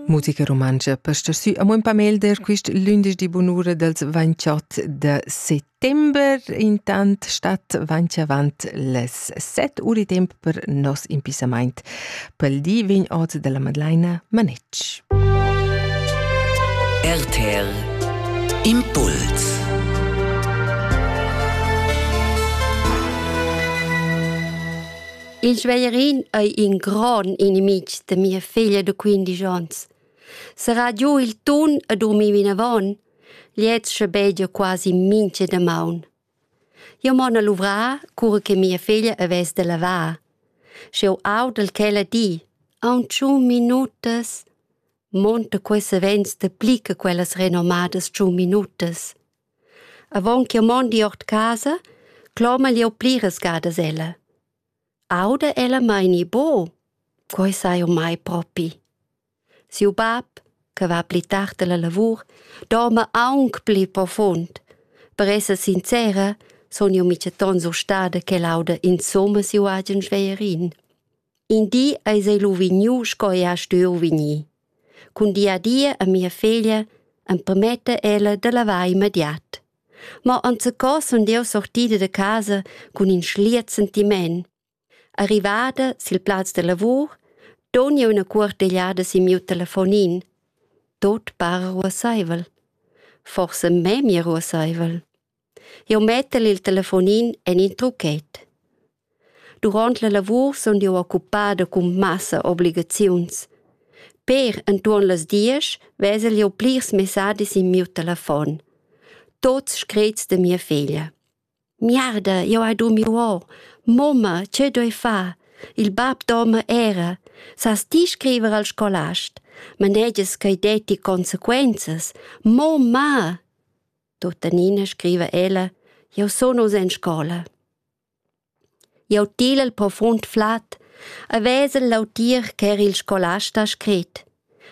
Musica rumantscha per star sü amo ün pa melder quist lündeschdi bunura dals 28 de settember. Intant stat avanti avant les 7 uri temp per nos impissamaint. Pel di vegn ot della Madlaina Manetsch. RTL Impuls Il sveierin ei in gron inimitg da mia figlia da quindisch onns. Serà giu il tun e durmir vinavon, gliez schabegia quasi mincha damaun. Io mon a luvrar cura che mia figlia avess da lavar. Sch'eu audel quella di, aunchun minutas, monta questa vents da pli che quellas renommadas tschun minutas. Avon ch'jeu mondi ord casa, clomel jeu pliras gadas ella. Auda ella mei ni buc? Quei sai jeu mai propi. Siu bab, che va pli tard alla lavur, dorma aunc pli profund. Per esser sincera, sun jeu miceton sustada ch'el auda insumma siu agen schwerin. In di eis ei lu vegniu sco ei ha stuiu vegnir. Cun di a di a mia figlia empermetta ella da lavar immediat. Ma enzacò sun jeu sortida da casa cun in schliet sentiment. Arrivada sil plaz da lavur, don jeu ina cuortegliada sin miu telefonin. Tot para ruasseivel. Forsa memia ruasseivel. Jeu mettel il telefonin en in truchet. Duront la lavur sun jeu occupada cun massa obligaziuns. Per entuorn las diesch vesel jeu plirs messadis in miu telefon. Tuts screts da mia feglia. Miarda, jeu hai durmiu or. Mumma, tgei doi far? Il bab dorma era. Sas ti scriver al scolast? Manegias ch'ei detti consequenzas? Mo, ma! Tuttenina scriva ella, jeu sun oz en scola. Jau til el profund flat, a vesel lautir ch'er il scolast ha scrit.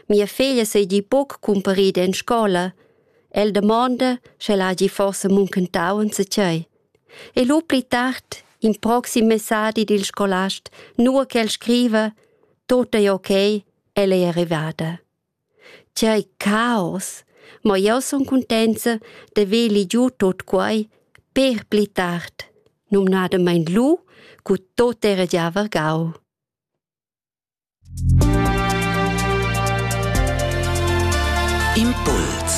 Mia figlia seigi buc cumparida en scola. El domanda, sche el hagi forse muncentau enzatgei. E lu pli tard, in proxim messadi dil scolast, nua che el scriva, tut ei ok, ella è arrivada. Tgei caos! Mo jeu sun cuntenza da vegli giu tut quei per pli tard, numnadamein lu, cu tot era gia vargau. Impuls